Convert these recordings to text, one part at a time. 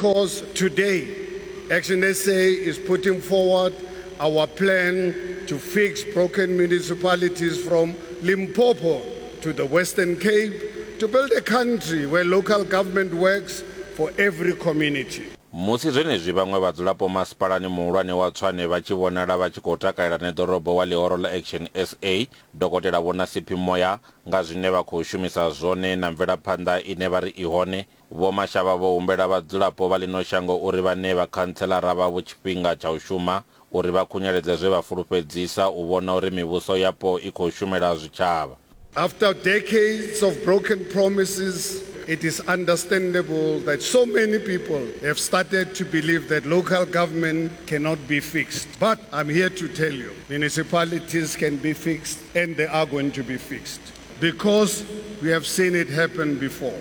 Because today Action SA is putting forward our plan to fix broken municipalities from Limpopo to the Western Cape to build a country where local government works for every community. Musi zwenezwi vhaṅwe vhadzulapo masipalani muhulwane wa Tshwane vha tshi vhonala vha tshi khou takalela neḓorobo wa ḽihoro ḽa Action SA, Dokotela Vho Nasiphi Moya nga zwine vha khou shumisa zwone na mvelaphanḓa ine vha ri i hone, Vho Mashavha vho humbela vhadzulapo vha ḽino shango uri vha ṋee vhakhantsheḽara vhavho tshifhinga tsha u shuma uri vha khunyeledze zwe vha fulufhedzisa u vhona uri mivhuso yapo i khou shumela zwitshavha. After decades of broken promises, it is understandable that so many people have started to believe that local government cannot be fixed but I'm here to tell you municipalities can be fixed and they are going to be fixed because we have seen it happen before.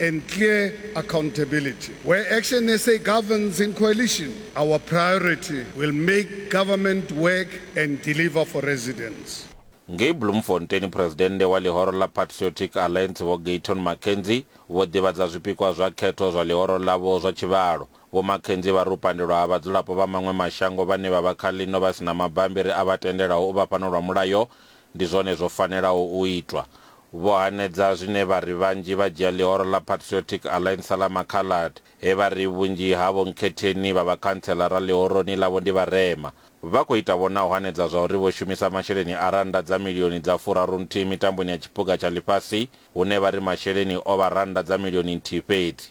and clear accountability. Where Action SA governs in coalition, our priority will make government work and deliver for residents. Ngei Bloemfontein, Phresidennde wa ḽihoro ḽa Patriotic Alliance Vho Gayton McKenzie vho ḓivhadza zwipikwa zwa khetho zwa ḽihoro ḽavho zwa tshivhalo. Vho McKenzie vha ri u pandelwa ha vhadzulapo vha maṅwe mashango vhane vha vha kha ḽino vha si na mabambiri a vha tendelaho u vha fhano lwa mulayo ndi zwone zwo fanelaho u itwa. Vho hanedza zwine vha ri vhanzhi vha dzhia ḽihoro ḽa Patriotic Alliance sa ḽa Makhalad, he vha ri vhunzhi ha Vho Nkhetheni vha vhakhantseḽara ḽihoroni ḽavho ndi vharema. Vha khou ita vho na u hanedza zwa uri vho shumisa masheleni a rannda dza milioni dza furarunthihi mitamboni ya tshiphuga tsha ḽifhasi hune vha ri masheleni o vha rannda dza milioni nthihi fhedzi.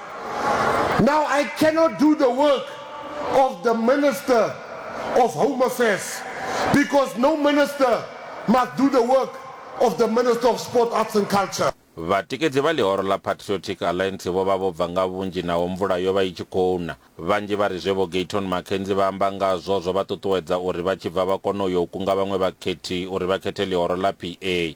Now I cannot do the work of the Minister of Home Affairs because no minister must do the work of the Minister of Sport, Arts and Culture. Vhatikedzi vha ḽihoro ḽa Patriotic Alliance vho vha vho bva nga vhunzhi naho mvula yo vha i tshi khou na. Vhanzhi vha ri zwe Vho Gayton McKenzie vha amba ngazwo zwo vha ṱuṱuwedza uri vha tshi bva vha kone u ya u kunga vhaṅwe vhakhethi uri vha khethe ḽihoro ḽa PA.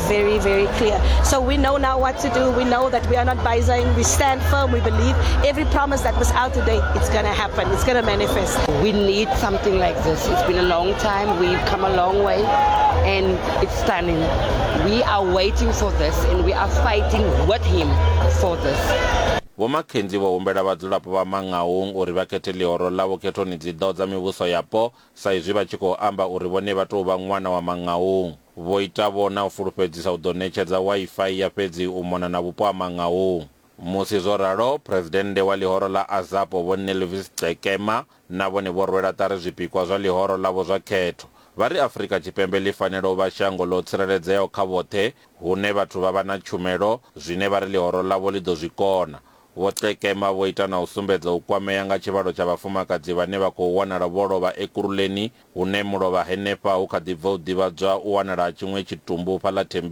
very, very clear. So we know now what to do. We know that we are not buying. We stand firm. We believe every promise that was out today, it's going to happen. It's going to manifest. We need something like this. It's been a long time. We've come a long way and it's stunning. We are waiting for this and we are fighting with him for this. vho makenzi vho humbela vhadzulapo vha mangaung uri vha khethe ḽihoro ḽavho khethoni dzi ḓo dza mivhuso yapo sa izwi vha tshi khou amba uri vhone vha tou vha ṅwana wa mangaung Vho Ita-vho na u fulufhedzisa u ḓo ṋetshedza Wi-Fi ya fhedzi u mona na vhupo ha Mangaung. Musi zwo ralo, Phresidennde wa ḽihoro ḽa Azapo Vho Nelvis Cekema na vhone vho rwela ṱari zwipikwa zwa ḽihoro ḽavho zwa khetho. Vha ri Afrika Tshipembe ḽi fanela u vha shango ḽo tsireledzeaho kha vhoṱhe hune vhathu vha vha na tshumelo, zwine vha ri ḽihoro ḽavho ḽi ḓo zwi kona. Vho Cekema vho ita na u sumbedza u kwamea nga tshivhalo tsha vhafumakadzi vhane vha khou wanala vho lovha Ekurhuleni Hune mulovha henefha hu kha ḓi bva u ḓivhadzwa u wanala tshiṅwe tshitumbu fhaḽa thembi